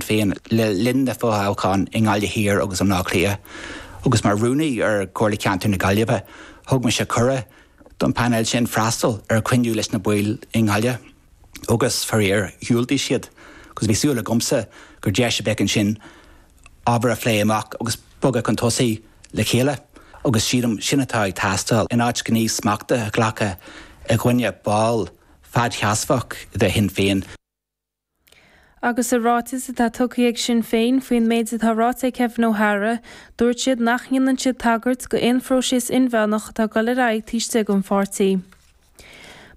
féin le linn na bhfothoghchán i nGaillimh Thiar agus i mBleá Cliath. Agus mar Rúnaí ar Chomhairle Ceantair na Gaillimhe, thug mise cuireadh don phainéal sin freastal ar chruinniú leis na baill i nGaillimh agus, faraor, dhiúltaigh siad agus bhí súil agamsa gur deis a bheadh ansin ábhar a phlé amach agus bogadh chun tosaigh le chéile. Agus sílim, sin atá ag teastáil in áit gníomh smachta a ghlacadh i gcoinne ball fadseasmhach de Shinn Féin. Agus i ráiteas atá tugtha ag Sinn Féin faoin méid atá ráite ag Kevin O'Hara, dúirt siad nach ndéanann siad tagairt d'aon phróiseas inmheánach atá ag dul ar aghaidh taobh istigh den pháirtí.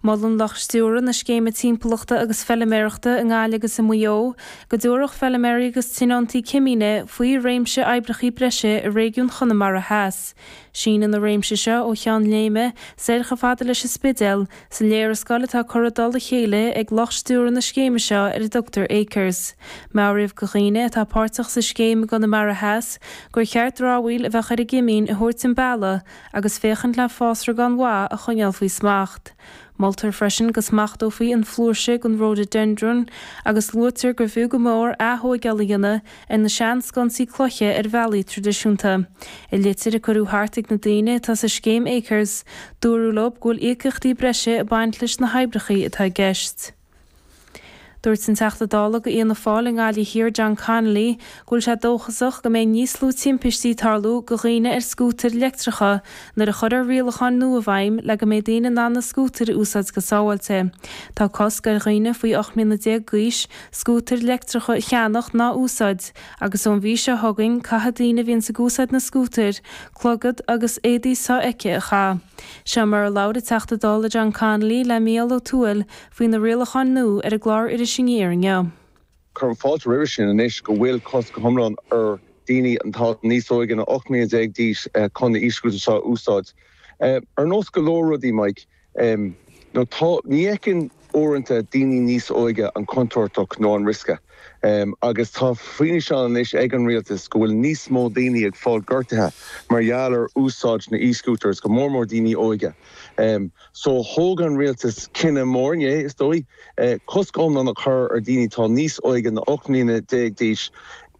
Molann lucht stiúrtha na Scéime Timpeallachta agus Feiliméarachta i nGaillimh agus i Maigh Eo go dtabharfadh feiliméaraí agus tionóntaí cimíne faoi réimse oibreachaí breise i réigiún Chonamara Theas. Síneann an réimse seo ó Cheann Léime soir chomh fada leis an Spidéal, Sa léarscáil atá curtha i dtoll a chéile ag lucht stiúrtha na scéime seo ar a dtugtar Acres, meabhraíodh do dhaoine atá páirteach sa scéim i gConamara Theas gur cheart dramhaíl a bheadh ar a gcimín a thabhairt chun bealaigh agus féachaint le fásra gan mhaith a choinneáil faoi smacht. Moltar freisin go smachtófaí an flúirse den Rhododendron agus luaitear gur fiú go mór atóigeáil a dhéanamh ar na seansconsaí cloiche ar bhealaí traidisiúnta. I litir a cuireadh thart chuig na daoine atá sa scéim Acres, dúradh leo go bhfuil íocaíochtaí breise ag baint leis na hoibreachaí atá i gceist. Dúirt an Teachta Dála go Fhianna Fáil i nGaillimh Thiar John Connolly go bhfuil sé dóchasach go mbeidh níos lú timpistí ag tarlú go dhaoine ar scútair leictreacha nuair a chuirfear rialacháin nua i bhfeidhm le go mbeidh daoine in ann na scútair a úsáid go sábháilte. Tá cosc ar dhaoine faoi 18 mbliana d'aois scútair leictreacha a cheannach ná a úsáid agus ón mhí seo chugainn caithfidh daoine a bhíonns ag úsáid na scútair clogad agus éadaí so-fheicthe a chaitheamh. Seo mar a labhair an Teachta Dála John Connolly le Mícheál Ó Tuathail faoi na rialacháin nua ar an gclár Iris Aniar inniu. Cuirim fáilte roimhe sin anois go bhfuil cosc go hiomlán ar dhaoine atá níos óige ná 18 mbliana d'aois chun na e-scútair seo a úsáid. Ar nós go leor rudaí, Mike, Em. Ó, tá, ní fheiceann, uaireanta, daoine níos óige an chontúirt nó an riosca. Em. Agus tá fianaise ann anois ag an rialtas go bhfuil níos mó daoine ag fáil gortaithe mar gheall ar úsáid na e-scooters, go mór mór daoine óige. Em. So, thóg an rialtas cinneadh mór, inné, is dóigh, eh, cosc iomlán a chur ar dhaoine atá níos óige ná 18 mbliana d'aois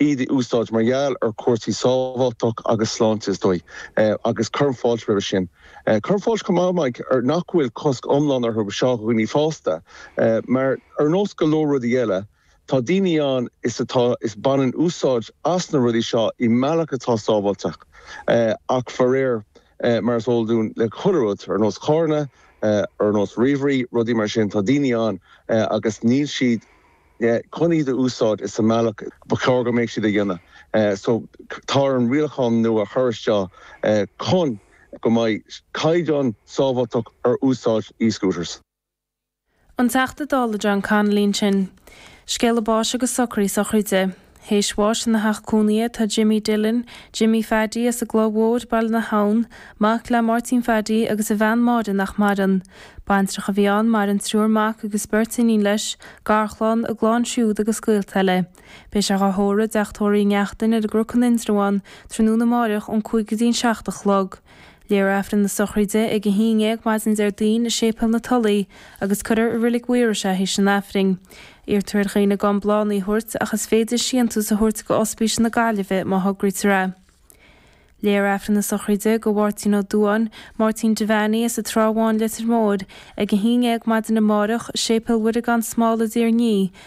iad a úsáid mar gheall ar chúrsaí sábháilteacht agus sláinte, is dóigh. Eh, agus cuirim fáilte roimhe sin. Cuirim fáilte chomh maith mar nach bhfuil cosc iomlán orthu do dhaoine fásta, mar ar nós go leor rudaí eile, tá daoine ann is atá is baineann úsáid as na rudaí seo i mbealach atá sábháilteach, ach faraor, mar is eol dúinn le chuile rud, ar nós carranna, ar nós ríomhairí, rudaí mar sin, tá daoine ann agus níl siad. chun iad a úsáid sa mbealach ba chóir go mbeadh siad a dhéanamh. So tá orainn rialachán nua a chur isteach chun go mbeidh caighdeán sábháilteacht ar úsáid e-scooters. An Teachta Dála John Connolly ansin. Scéala báis agus socraithe sochraide. Théis bháis ina theach cónaithe atá Jimmy Dillon, Jimmy Phaddy as an gCloch Mhór, Baile na hAbhann, mac le Máirtín Phaddy agus a bhean Máire nach maireann. Baintreach a bhí ann, maireann triúr mac agus beirt iníon leis, garchlann, a gclann siúd agus gaolta eile. Beidh sé dhá thórramh i dTeach Tórraimh Uí Neachtain ar an gCnoc in Indreabhán tráthnóna amáireach ón cúig go dtí an seacht a chlog. Léifear Aifreann na sochraide ag a haon dhéag maidin Déardaoin i Séipéal na Tulaí agus cuirfear i Reilig Mhaírois é théis an Aifrinn. Iarrtar ar dhaoine gan bláthanna a thabhairt ach is féidir síntiús a thabhairt go Ospís na Gaillimhe má thograítear é. Léifear Aifreann na sochraide go Mhartina Duáin, Martina Devaney, as an Trá Bháin, Leitir Móir, ag a haon dhéag maidin amárach, Séipéal Mhuire Gan Smál i dTír an Fhia,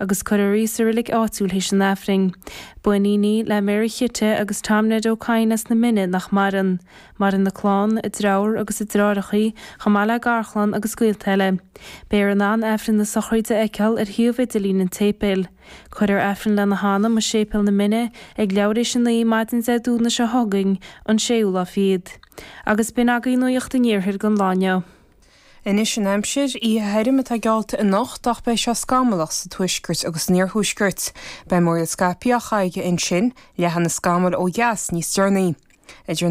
agus cuirfear í sa reilig áitiúil théis an Aifrinn. Ba iníon í le Mary Chite agus Tom Ned Ó Cadhain as na Mine nach maireann. Maireann a clann, a dreabhar agus a dreáreachaí, chomh maith le garchlann agus gaolta eile. Beifear in ann Aifreann na sochraide a fheiceáil ar shuíomh idirlín an tséipéil. Cuirfear Aifreann lena hanam i Séipéal na Mine ag leathuair théis a naoi maidin Dé Domhnaigh seo chugainn, an séú lá fichead. Agus b'in agaibh nuaíocht an Iarthair don lá inniu. Anois an aimsir. Oíche thirim atá geallta anocht ach beidh sé scamallach sa tuaisceart agus san iarthuaisceart. Beidh múraíl scaipthe Chaige, ansin, leathfaidh na scamaill ó dheas, níos deireanaí. Idir an.